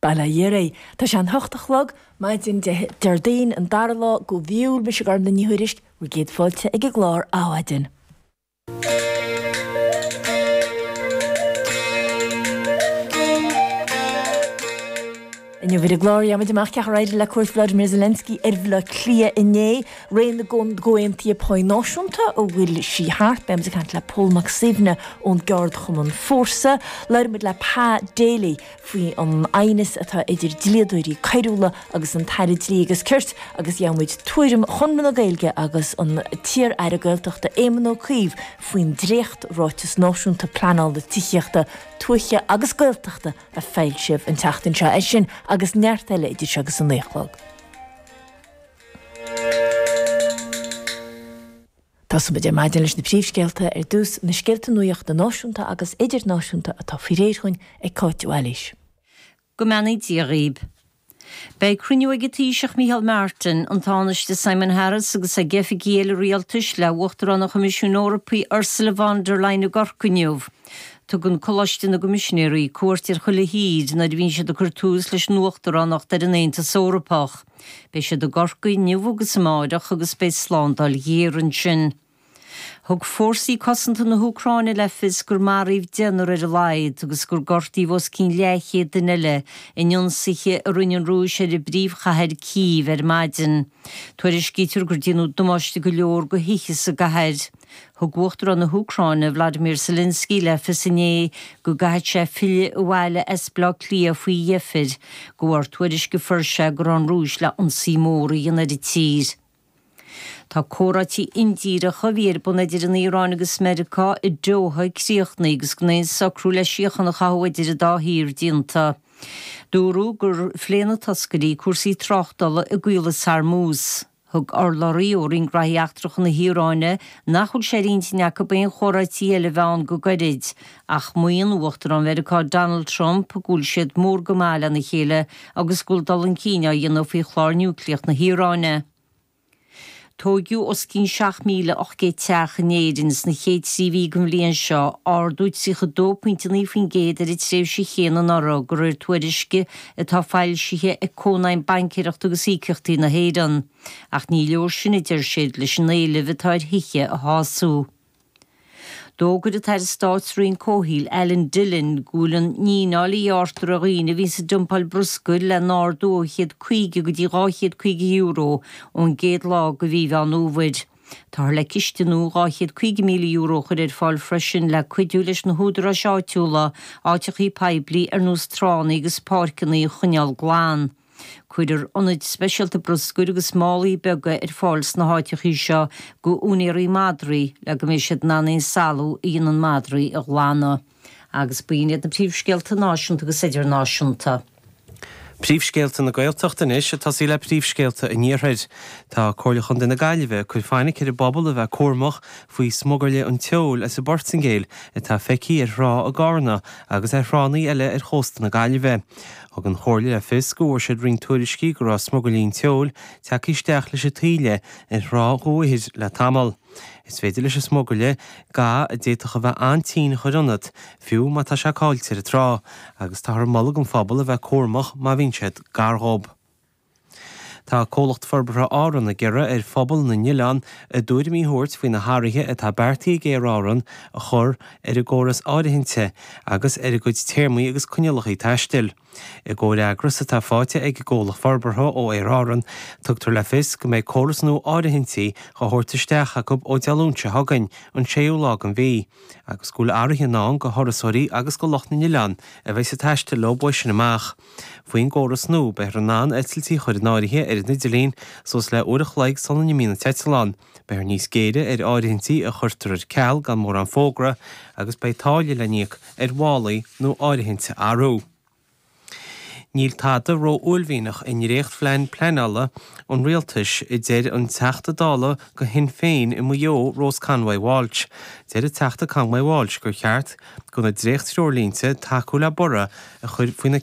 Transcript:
Bail ó Dhia oraibh. Tá sé an hocht a chlog, maidin Dé Déardaoin, an dara lá de mhí Iúil, mise Gormfhlaith Ní Thuairisg, bhur gcéad fáilte ag an gclár Adhmhaidin. Inniu ar an gclár, gheobhaimid amach cén chaoi ar éirigh le cuairt Volodymyr Zelensky ar Bhaile Átha Cliath inné, ré na gcomhaontuithe pá náisiúnta, an bhfuil sí thart. Beimid ag caint le Pól Mac Suibhne ón gceardchumann Fórsa. Labhróimid le Pa Daly faoi an aighneas atá idir dlíodóirí coiriúla agus an tAire Dlí agus Cirt agus gheobhaimid tuairim Chonradh na Gaeilge agus an iar-Aire Gaeltachta Éamon Ó Cuív faoin dréacht-ráiteas náisiúnta pleanála tithíochta tuaithe agus Gaeltachta a foilsíodh an tseachtain seo. É sin agus neart eile idir seo agus an naoi a chlog. Tosóimid ar maidin leis na príomhscéalta ar dtús, na scéalta nuachta náisiúnta agus idirnáisiúnta atá faoi réir dúinn ag Cáit Áilis. Go mbeannaí Dia dhaoib. Beidh cruinniú ag an Taoiseach Micheál Martin, an Tánaiste Simon Harris agus ag oifigigh eile rialtais le hUachtarán an Choimisiúin Eorpaigh Ursula von der Leyen i gCorcaigh inniu. Tugann Coláiste na gCoimisinéirí cuairt ar chuile thír nuair a bhíonn siad ag cur tús leis an Uachtaránacht ar an Aontas Eorpach. Beidh siad i gCorcaigh inniu agus amárach agus beidh slándáil ghéar ansin. Thug Fórsaí Cosanta na hÚcráine le fios gur maraíodh deichniúr ar a laghad agus gur gortaíodh os cionn leathchéad duine eile in ionsaithe a rinne an Rúis ar an bpríomhchathair Cív ar maidin. Tuairiscítear gur déanadh damáiste go leor do thithe sa gcathair. Thug Uachtarán na hÚcráine, Vladimir Zelensky, le fios inné go gcaithfeadh sé filleadh abhaile as Bleá Cliath faoi dheifir, de bharr tuairisc a fuair sé go raibh an Rúis le ionsaí mór a dhéanamh ar an tír. Tá comhráití indíreacha a bhí ar bun idir an Iaráin agus Meiriceá i Doha críochnaithe agus gan aon socrú le síocháin a chothú idir an dá thír déanta. Dúradh gur phléigh na toscairí cúrsaí tráchtála i gCaolas Hormuz. Thug urlabhraí ó Roinn Gnoithí Eachtracha na hIaráine nach bhfuil sé ar intinn acu aon chomhráití eile a bheith ann go gairid, Ach maíonn Uachtarán Mheiriceá Donald Trump go bhfuil siad mór go maith lena chéile agus go bhfuil dul chun cinn á dhéanamh faoi chlár núicléach na hIaráine. Tóigeadh os cionn 7,800 teach in Éirinn sna chéad trí mhí den bhliain seo, ardú 32.9% ar an tréimhse chéanna anuraidh de réir tuairisce atá foilsithe ag Cónaidhm Baincéireachta agus Íocaíochtaí na hÉireann. Ach ní leor sin, a deir siad, leis an éileamh atá ar thithe a shású. D'fhógair an tAire Stáit sa Roinn Comhshaoil, Alan Dillon, go bhfuil an fhíneáil a ghearrtar ar dhaoine a bhíonns ag dumpáil bruscair le n-ardú ó €150 go dtí €250 ón gcéad lá de mhí Mheán Fhómhair. Táthar le ciste nua €250,000 a chur ar fáil freisin le cuidiú leis na húdaráis áitiúla áiteachaí poiblí ar nós tránna agus páirceanna a choinneáil glan. Cuirfear ionaid speisialta bruscair agus málaí beaga ar fáil sna háiteachaí seo go úinéirí madraí le go mbeidh siad in ann aon salú a dhéanann madraí a ghlanadh. Agus b'in iad na príomhscéalta náisiúnta agus idirnáisiúnta. Príomhscéalta na Gaeltachta anois ag tosaí le príomhscéalta an iarthair. Tá Comhairle Chontae na Gaillimhe ag cur fainic ar an bpobal a bheith cúramach faoi smugairlí an tseoil as an bPortaingéil atá feicthe ar thrá i gCarna agus ar thránnaí eile ar chósta na Gaillimhe. Thug an Chomhairle le fios go bhfuair siad roinnt tuairiscí go raibh smugairlí an tseoil tagtha isteach leis an taoille ar thrá Dhumhaigh Bhig le tamall. Is féidir leis an smugairle ga a d'fhéadfadh a bheith an-tinn a chur ionat, fiú má tá sé cáillte ar an trá, agus táthar ag moladh don phobal a bheith cúramach má bhíonn siad gar dhób. Tá Comhlacht Forbartha Árann ag iarraidh ar phobal na n-oileán a dtuairimí a thabhairt faoi na hathruithe atá beartaithe ag Aer Árann a chur ar a gcóras áirithinte agus ar a gcuid téarmaí agus coinníollacha taistil. I gcomhfhreagras atá faighte ag an gComhlacht Forbartha ó Aer Árann, tugtar le fios go mbeidh córas nua áirithintí dhá thabhairt isteach acu ó Dé Luain seo chugainn, an séú lá den mhí, agus go bhfuil athruithe i ndán do thurasóirí agus do lucht na n-oileán a bheidh ag taisteal leo uaidh sin amach. Faoin gcóras nua, beifear in ann eitiltí a chur in áirithe ar an idirlíon suas le uair a chloig sula n-imíonn an t-eitleán, beifear níos géire ar áirithintí a chuirtear ar ceal gan mórán fógra agus beidh táille le n-íoc ar mhálaí nó áirithint a athrú. Níl tada ró-uaillmhianach i ndréachtphlean pleanála an rialtais, a deir an Teachta Dála go Shinn Féin i Maigh Eo, Rose Conway-Walsh. Deir an Teachta Conway-Walsh gur cheart do na dréacht-threoirlínte tacú le borradh a chur faoi na